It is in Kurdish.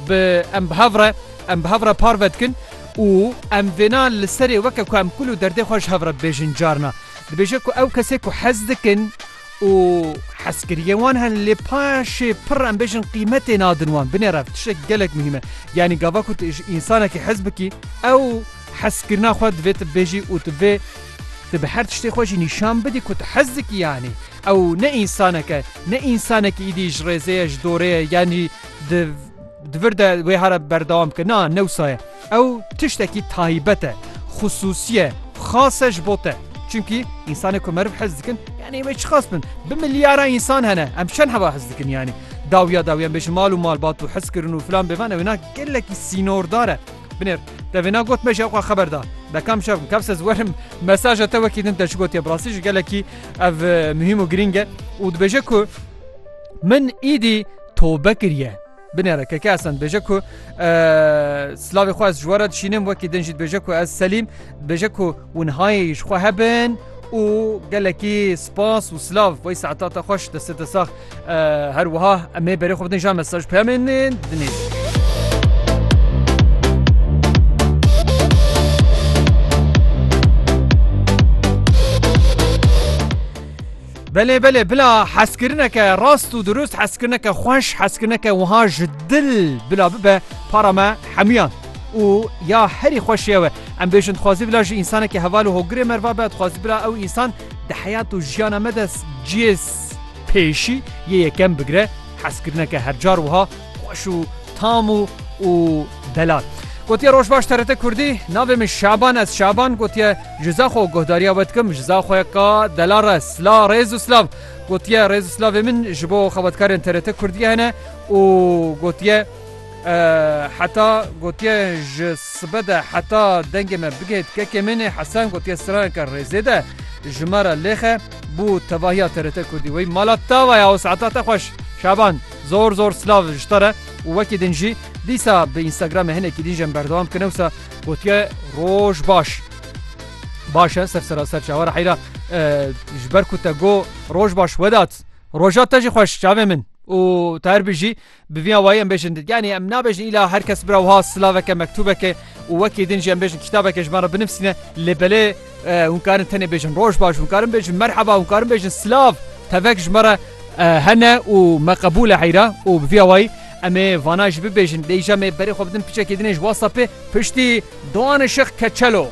Bi em bi hev re em bi hev re parve dikin û em vêna li serê weke ku em kul û derdê xwe ji hev re dibêjin carna dibêje ku ew kesê ku hez dikin û hezkiriyên wan hene lê paşê pir em bêjin qîmetê nadin wan binê rev tiştek gelek muhîm e yanî gava ku tu ji însanekî hez bikî ew hezkirina xwe divê tu bibêjî û tu vê tu bi her tiştê xwe jî nîşan bidî ku tu hez dikî yanî ew ne însaneke ne însanekî êdî ji rêzê ye ji dorê ye yanî di di vir de wê hara berdewam ke na newsaye ew tiştekî taybet e xisûsiye xase ji bo te çunkî însanê ku meriv hez dikin yanî wê çiqas bin bi milyara însan hene em çend heva hez dikin yanî dawiya dawiyan bêjin mal û mal bat û hez kirin û filan bêvan ewêna gelekî sînordar e binêr devêna got me ji ew xeber da dekam şev kevs ez werim mesaja te wekî din te ji gotiye bi rastî ji gelekî ev muhîm û girîng e û dibêje ku min îdî towbe kiriye. Binêre keke esen bêje ku silavê xwe ez ji were dişînim wekî din jî dibêje ku ez selîm dibêje ku winhayê ji xwe hebin û gelekî spas û silav wey saeta te xweş destê te sax her wiha em ê berê xwe bidin ja mesaj peyamên dinêjin. Belê belê bila hezkirineke rast û dirust hezkirineke xweş hezkirineke wiha ji dil bila bibe para me hemûyan û ya herî xweşê ew e. Em bêjin dixwazî bila ji însaneke heval û hogirê merva be dixwazî bila ew însan di heyat û jiyana me de cihê pêşî yê yekem bigire hezkirineke hercar wiha Xweş û tam û û delal. Gotiye roj baş TRT Kurdî, navê min Şaban ez Şaban gotiye ji za xwe guhdariya we dikim ji za xwe ka delal re sla rêz û silav gotiye rêz û silavê min ji bo xebatkarên TRT Kurdiyê hene û gotiye heta gotiye ji sibe de heta dengê me bigihêt kekê min ê Hesen gotiye straneke rêzê de ji me re lêxe bû tevahiya TRT Kurdî wey mala tava ya û saeta te xweş Şaban. Zor zor silav ji te re û wekî din jî dîsa bi Instagramê hinekî din jî em berdewam dikin ewsa gotiye roj baş. Baş e ser sera ser çawa re heyra ji ber ku te go roj baş wedat roja te jî xweş çavê min û te her bijî bi vî awayî em bêjin yanî em nabêjin îla her kes bira wiha silaveke mektûbeke û wekî din jî em bêjin kîtabeke ji me re binivîsîne lê belê Hûn karin tenê bêjin roj baş, hûn karin bêjin merheba, hûn karin bêjin silav. Tevek ji me re hene û me qebûl e heyra û bi vîya wayî em ê vana jî bibêjin. Lê îja me berê xwe bidin piçekê din ê ji WhatsAppê piştî Doğanê Şix Keçelo.